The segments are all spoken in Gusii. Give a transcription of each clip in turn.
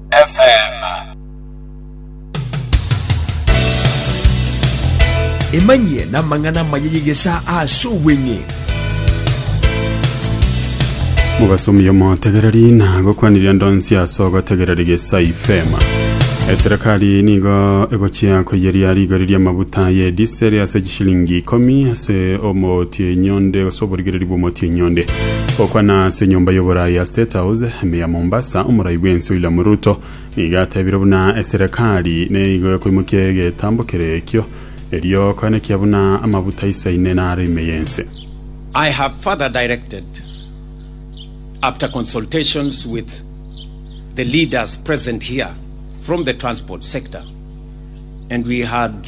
FM. Emanyie namang'ana amaya y'egesaa ase obweng'e. mubasomi omotegereri na gokwaniria ndonsi ase ogotegereri gesa ifema eserekari nigo egochia koyeria rigori riamabuta ye diseri ase Shilingi ikomi ase omootia enyonde gose oborigereri bw'omootia enyonde. Gokwana ase enyomba y'oborai ya State House ime ya Mombasa, omorai bw'ense William Ruto nigo atebire buna eserekari nigo ekoimokia egetambo kere ekio erio koenekia buna amabuta aisaine naro ime y'ense. I have further directed, after consultations with the leaders present here from the transport sector, and we had.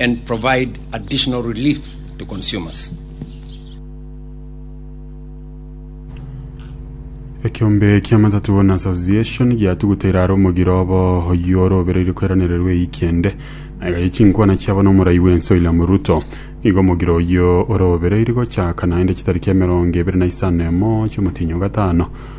and provide additional relief to consumers. Ekiombe kia Matatu Owners Association giatuguteire aro omogiro obo oyio ore obereire kweranererwa eyiki ende na iga yechinkwana chiabo nomorai bwense William Ruto. Igo omogiro oyio ore obereire gochaka naende chitariki emerongo ebere na isano emo chiomotinyi ogatano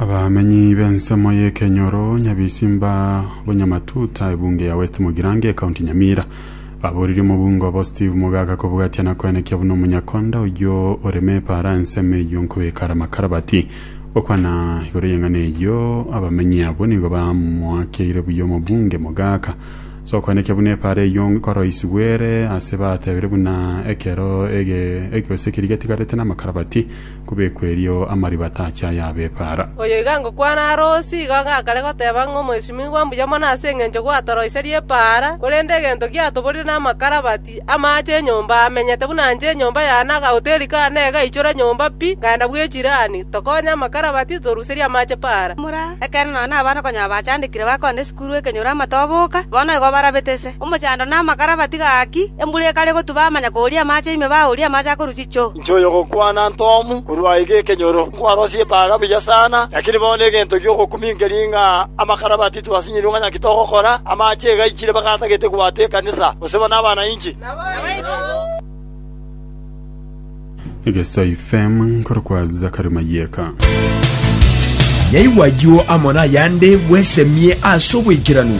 Abamenyi b'ensemo y'ekenyoro Nyabisimba Bonyamatuta ebunge ya West Mugirango ekaunti Nyamira baboririe omobunge obo Steve Mogaka kobwatia na koenekia buna omonyakonda oyio oreme epara ensemo eyio nkobeka are amakarabati. Gokwana igoro y'eng'ana eyio abamenyi abwo nigo bamoakeire buya omobunge Mogaka ase okoenekia buna epara eyio nkoroisigwa ere ase batebire buna ekero ege gose ekeri getigarete namakarabati kobekwa erio amariba tache ayabepaara. Oyo iga ngokwana are osie, igo gakare goteba ng'a omwesimigwa mbuya mono ase engencho gwatoroiserie epaara, korende egento giatoborire namakarabati amaache enyomba amenyete buna inche enyomba yane na agahoteri kane egaichora nyomba pi nkaenda bw'echirani, tokonye amakarabati, toruserie amaache paara. Ekeene nonya nabana konya abachandekire bakonde. Korwa ekenyoro amato aboka, bono igo barabete ise. Omochando na amakara batiga gaki, embura ekare gotuba amanya kooria amache ime baooria amache akorwa chichoo. Inche oyogokwana Ntomu, korwa aiga ekenyoro, nkwarosie epaga mbuya sana, lakini bono egento gi'ogokumia nkeri ng'a amakara batitwe ase nyirunga ng'aki togokora, amache egaichire baka atagete kobwata ekanisa, gose buna abana inche. Egesai fm nkorokwa Zachary Mayeka. Nyaigwa ayio amo nayande bwesemie ase oboikeranu.